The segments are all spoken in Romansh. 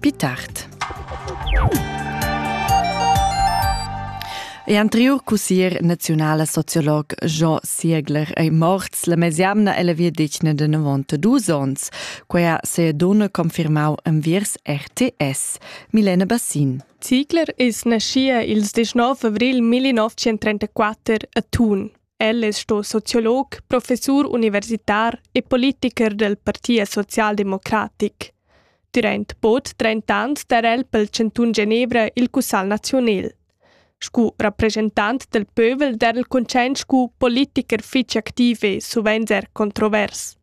Pi tard. E anterior cussier naziunala sociolog Jean Siegler ei morts la mesiamna ella via decna de 92 ons. Quella se a donna confirmau enviers RTS. Milena Bassin. Ziegler is naschia ils 19 avril 1934 a Thun. El es sto sociolog, professur universitar e politicher del Partia socialdemocratic. Durant bod 30 ans darel pel Cantun Genevra il Cussal Naziunel. Scu rappresentant del pövel darel concent scu politicher fich activ e suvent er controvers.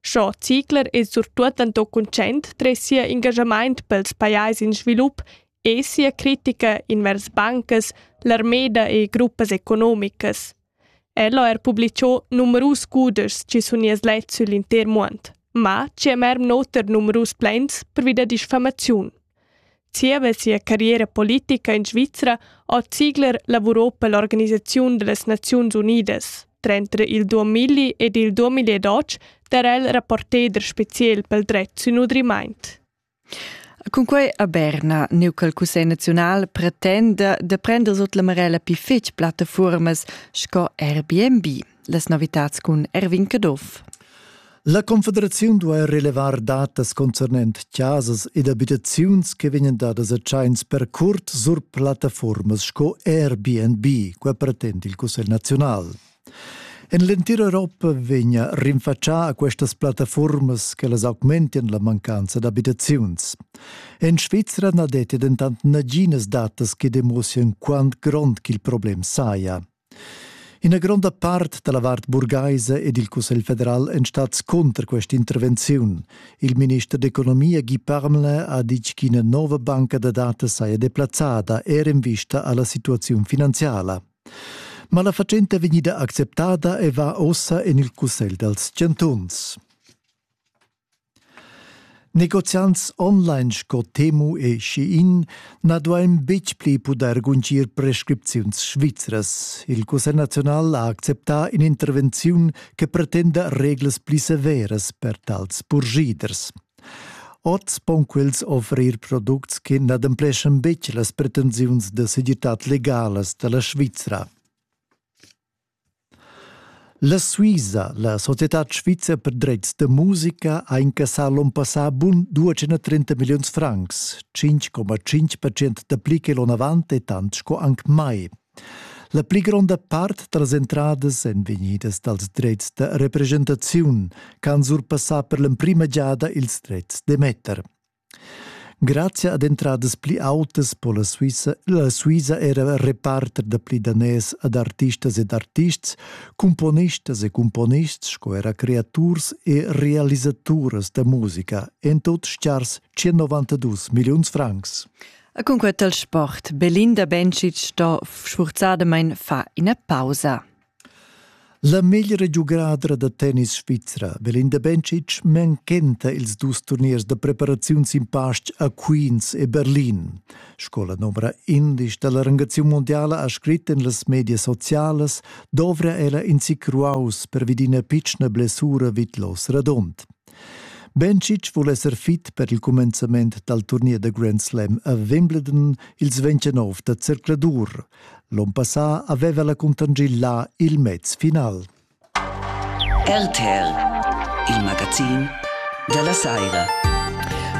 Scho Ziegler es surtuot anto concent tre sia engagamaint pels pajais in svilup è sia critica invers bancas, l'armeda e gruppas economicas. El ha er publicò numerus cudeschs che sun ias let sül inter muond, ma ci è merm noter numerus plans pervi da diffamaziun. Zieva sia carriera politica in Svizra ha Ziegler lavurò per l'Organisazione delle Nazioni Unidas. Tra il 2000 ed il 2012 era el rapporter special pel dret sün nutrimint. Cunquei a Berna, neu col Cussegl naziunal, pretenda da prender sut la marella pli fetg plattafuormas sco Airbnb. Las novitads cun Erwin Caduff. La Confederaziun duai relevar datas concernent casas ed abitaziuns che vegnan dadas a tschains per curt sur plattafuormas sco Airbnb, quai pretend il Cussegl naziunal. En l'entira Europa vegna rinfatschà a questas plattafurmas che las augmentian la mancanza d'abitaziuns. En Svizra na detti dentant naginas datas che demussian quant grond ch'il problem saja. Ina gronda part da la vart burgaisa ed il Cussegl federal èn stads cunter questa intervenziun. Il minister d'economia Guy Parmelin ha ditg ch'ina nova banca da datas saja deplazzada er en vista a la situaziun finanziala. Ma la fatschenta vegnida acceptada e va ossa en il cussegl dals chantuns. Negoziants online sco Temu e Shein na duain betg pli pudair guntgir prescripziuns svizras. Il Cussegl naziunal ha acceptà in'intervenziun che pretenda reglas pli severas per tals purschiders. Oz pon quels offrir products che n'adempleschan betg las pretensiuns da segirtad legalas da la Svizra. La Suisa, la societad svizra per dretgs da musica, ha incassà l'onn passà bun 230 milliuns francs. 5,5% dapli che l'onn avant è tant sco anc mai. La pli gronda part tras entradas èn vegnidas dals dretgs da representaziun ch'han surpassà per l'emprima giada ils dretgs d'emetter. Grazia ad entradas pli autas po la Suissa, la Suisa era reparter da pli daners ad artistas ed artists, cumponistas e cumponists sco era creaturs e realisaturas da musica, en tut stgars 192 milliuns francs. E cun quet al sport, Belinda Bencic sto sfurzadamain fa ina pausa. La meglra giugadra da tennis svizra, Belinda Bencic, manchenta ils dus turniers da preparaziun sin pastg a Queens e Berlin. Sco la novra indisch da la rangaziun mondiala ha scrit en las medias socialas, dovra ella in sic ruaus pervi d'ina pitschna blessura vid l'os radund. Bencic vul esser fit per il cumenzament dal turnier da Grand Slam a Wimbledon ils 29 da zercladur. L'onn passà aveva la Contangil là il mez final. RTL, il magazin della Saira.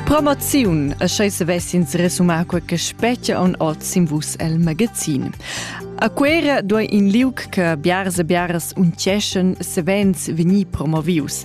Promoziun e schei se vessins resumar quei che spetga on oz in vus el magazin. A Quera doi in liug che biars e biaras unceschen se vens vegni promovius.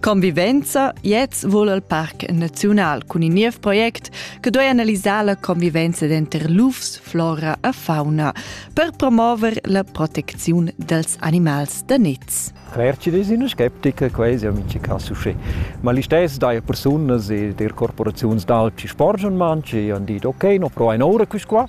Convivenza Jetzt vul al Parc Naziunal cun in niev project che duei analisar la convivenza denter lufs, flora e fauna per promover la protecziun dels animals da niz. Rerci una skeptica quasi amici cassuche. Ma listess dai persunas e der corporaziuns d'alpi sporgen manci e han dit ok, no pro ein ora quis qua.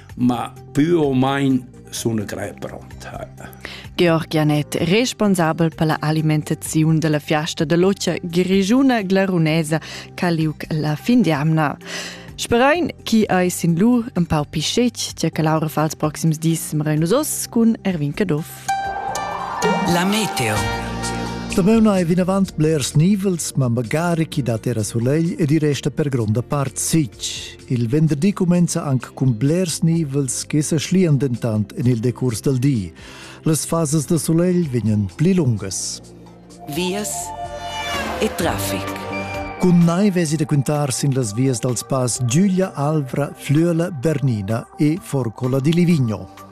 ma più o meno sono grei pronta. Georg Janet, responsabel per la alimentazione della fiesta dell'occia grigiuna glarunesa Caliuc la fin di amna. Sperain chi eis in lu un pau pischec, tgè che Laura fa els proxims dis Mreinos Os cun Erwin Caduff. La Meteo. Stameuna è vinavant blers nivels, ma magari chi dat era solegl ed i resta per gronda part sic. Il venderdi cumenza anc cun blers nivels che sa schlian dentant en il decurs dal di. Las fasas da sulegl vegnan pli lungas. Vias e traffic. Cun nai vesi da quintar sin las vias dals pass Giulia Alvra, Flüela, Bernina e Forcola di Livigno.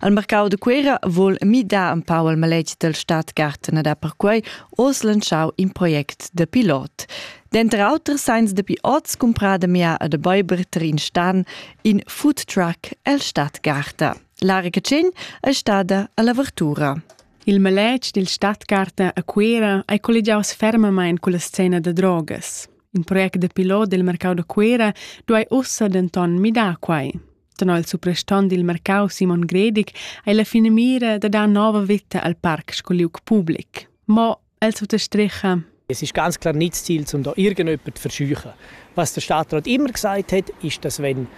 Al mercau de Cuera vol midar un pau il maletg del Stadtgarten da perquei oz lanschau in project de pilot. Denter auter seins de pilots cumpra de mia e de Beuberter in stan in food truck el Stadtgarten. La recetschin è stada all'avertura. Il maletg dil Stadtgarten a Cuera è collegiaus fermamain con la scena de drogas. In project de pilot del mercau de Cuera duai ussa denton midar quai. Tenor il suprastant dil marcau Simon Gredig ei la finamira da dar nova veta al parc sco liug public. Mo el suttostricha Es ist ganz klar nicht das Ziel, um da irgendjemanden zu verscheuchen. Was der Stadtrat immer gesagt hat, ist, dass wenn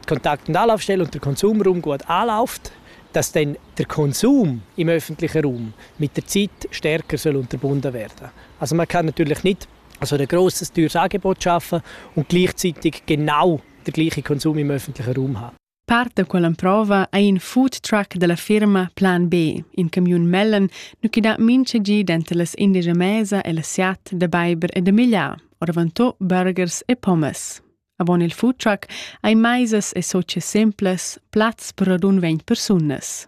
die Kontakt- und Anlaufstelle und der Konsumraum gut anläuft, dass dann der Konsum im öffentlichen Raum mit der Zeit stärker soll unterbunden werden Also man kann natürlich nicht so ein grosses teures Angebot schaffen und gleichzeitig genau der gleiche Konsum im öffentlichen Raum ha. Part da quella prova è in food truck della firma Plan B, in camion mellen, nu chi dà mincha gi denter las indigia mesa e la siat da beiber e da migliar, oravantò burgers e pommes. Avon il food truck hai maisas e socie simples, plats per radun vent persunas.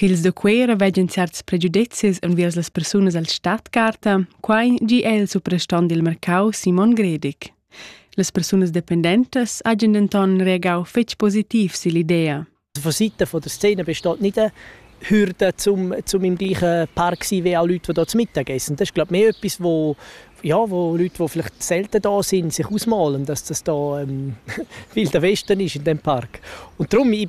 ch'ils da Cuera veggan certs pregiudezis enviers las persunas al Stadtgarta, quai gi è il suprastant dil mercau Simon Gredig. Las persunas dependentas hajan denton reagau fetg positiv sill'idea. Von Seiten von der Szene besteht nicht eine Hürde, zum, zum im gleichen Park zu sein wie auch Leute, die hier zum Mittag essen. Das ist, glaube ich, mehr etwas, wo, ja, wo Leute, die vielleicht selten da sind, sich ausmalen, dass das da ähm, Wilder Westen ist in dem Park. Und darum, ich,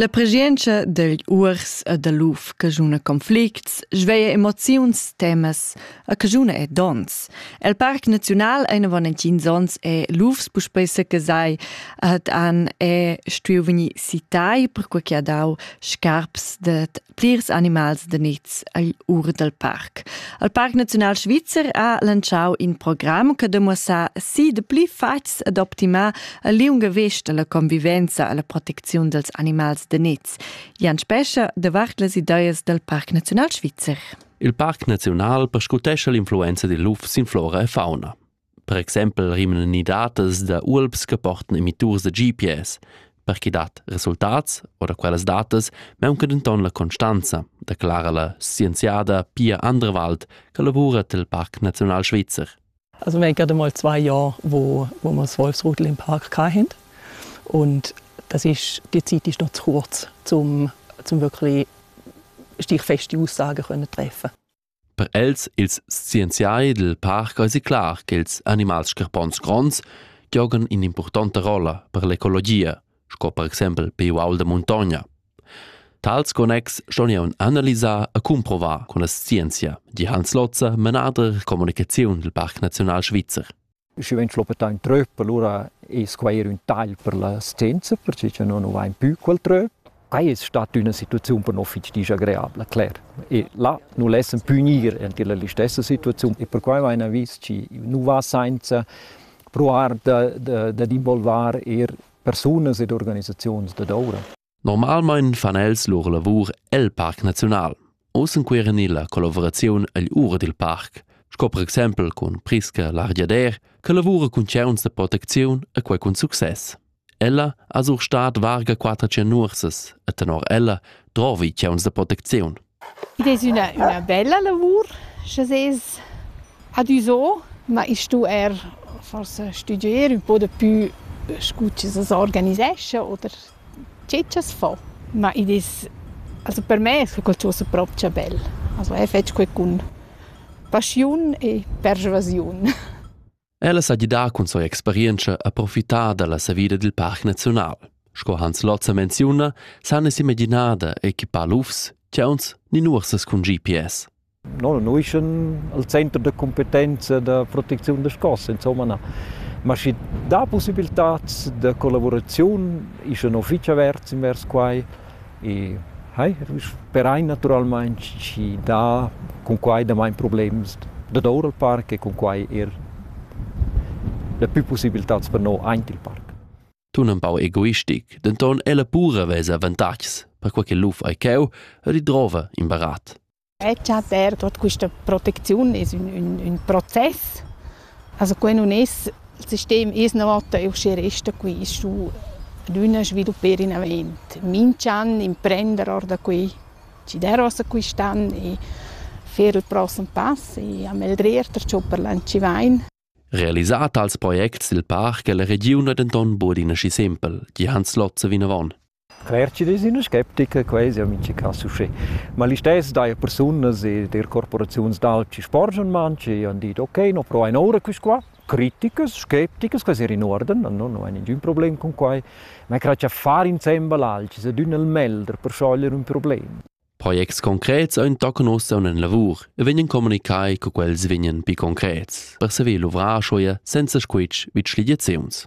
La preschientscha degl uors e dal luf caschuna conflicts, sveia emoziuns, temas e caschuna e dons. El Parc Naziunal eine Valentins ons è lufs puspei secasai, ad an è stuiu vegnir citai per quei che ha dau scarps dad plirs animals da niz agl ur dal parc. Il Parc Naziunal Svizzer ha lanciau in program che demuossa si de pli fatgs ed optimar a liunga vesta la convivenza e la protecziun dels animals da niz. Jan Spescha davart las ideas del Parc Naziunal Svizzer. Il Parc Naziunal perscrutescha l'influenza dil luf sin flora e fauna. per exempel rimnan ni datas da ualps che portan emitturs da GPS. Per chi dat resultats o da quellas datas maunca denton la constanza, declara la scienziada Pia Anderwald, che lavura tel Parc Naziunal Svizzer. Also wir haben gerade mal zwei Jahre, wo, wo wir das Wolfsrudel im Park hatten. Und das ist, die Zeit ist noch zu kurz, um, um wirklich stichfeste Aussagen treffen Per els ils scienziai dil parc eisi clar ch'ils animals scarpons gronds giogan in'impurtonta rolla per l'ecologia, sco per exempel pei uaul da muntogna. Tals connexs ston jeu analisar e cumprovar cun la scienzia, di Hans Lotzer, manader communicaziun dil Parc Naziunal Svizzer. Schi vegn schluppetà ün tröp, alura es quai eir ün tagl per la scienza, perche cha no nu vain pü quel tröp. Quai es stat üna situaziun per no fich disagreabla, cler. E là nu lessan pü gnir enti la listessa situaziun e perquai vaina vis chi nu va sainza pruar da d'involvar eir persunas ed organisaziuns dad oura. Normalmein fan els lur lavur el Parc Naziunal. Oz encueren illa collavuraziun agl ur dil parc, sco per exempel cun Priska Largiader, che lavura cun tgeuns de protecziun e quei cun success. Ella ha sur stat varga quater cennursas e tenor ella drovi tgeuns de protecziun. Id es üna üna bella lavur scha sez adüso, ma i stu eir forsa stüdgier ün po dapü scu chi s'as organisescha oder che cha's fa. Ma id es also per me es qualchosa propcha bel. Also eir fetsch qualcun paschiun e perschuasiun. Ella sa gidar cun sia experientscha a profitar dalla savida dil parc naziunal. Sco Hans Lotzer menziuna, san es imaginada equipar lufs, chauns ni nuorsas cun GPS. Noi nu ischan al center da competenza da protecziun da scos, insomma na. Ma schi dà possibiltats da collaboraziun ischan fich averts invers quai E hai sperai naturalmein chi dà cun quai damain problems dad our al parc e cun quai eir dapü pussibiltats per no aint il parc. Tun ün pau egoistic, denton ella pura vesa avantatgs, perquai che luf ei cheu e ridrova in barat. Ella per tuot quista protecziun es ün ün ün process. Also quai nun es il sistem es üna vota e uschè resta qui. As stu adüna svilupper in avent. Minch'an imprender or da qui, schi dairas a quist'an e fer il prossem pass e ameldrir perciò per l'anzi vain. Realisà tals projects i'l parc e la regiun ha denton bod in aschi sempel, di Hans Lotzer vinavon. Retschider es üna sceptica, quai es eau mincha cas uschè. Ma listess daja persunas e der corporaziuns d'alch chi sporgian manch e han dit: «Okay, no provain oura quist qua». Criticas, scepticas, quai s'eir in uorden, no no hain ningün problem cun quai. Ma eu crai cha far insembel alch es adüna il meglder per schoglier ün problem. Projects concrets ein tocca nossa una lavur e vegnan communicai co quels vegnan pi concrets, per saver luvrar schoia senza squitsch vid schligiaziuns.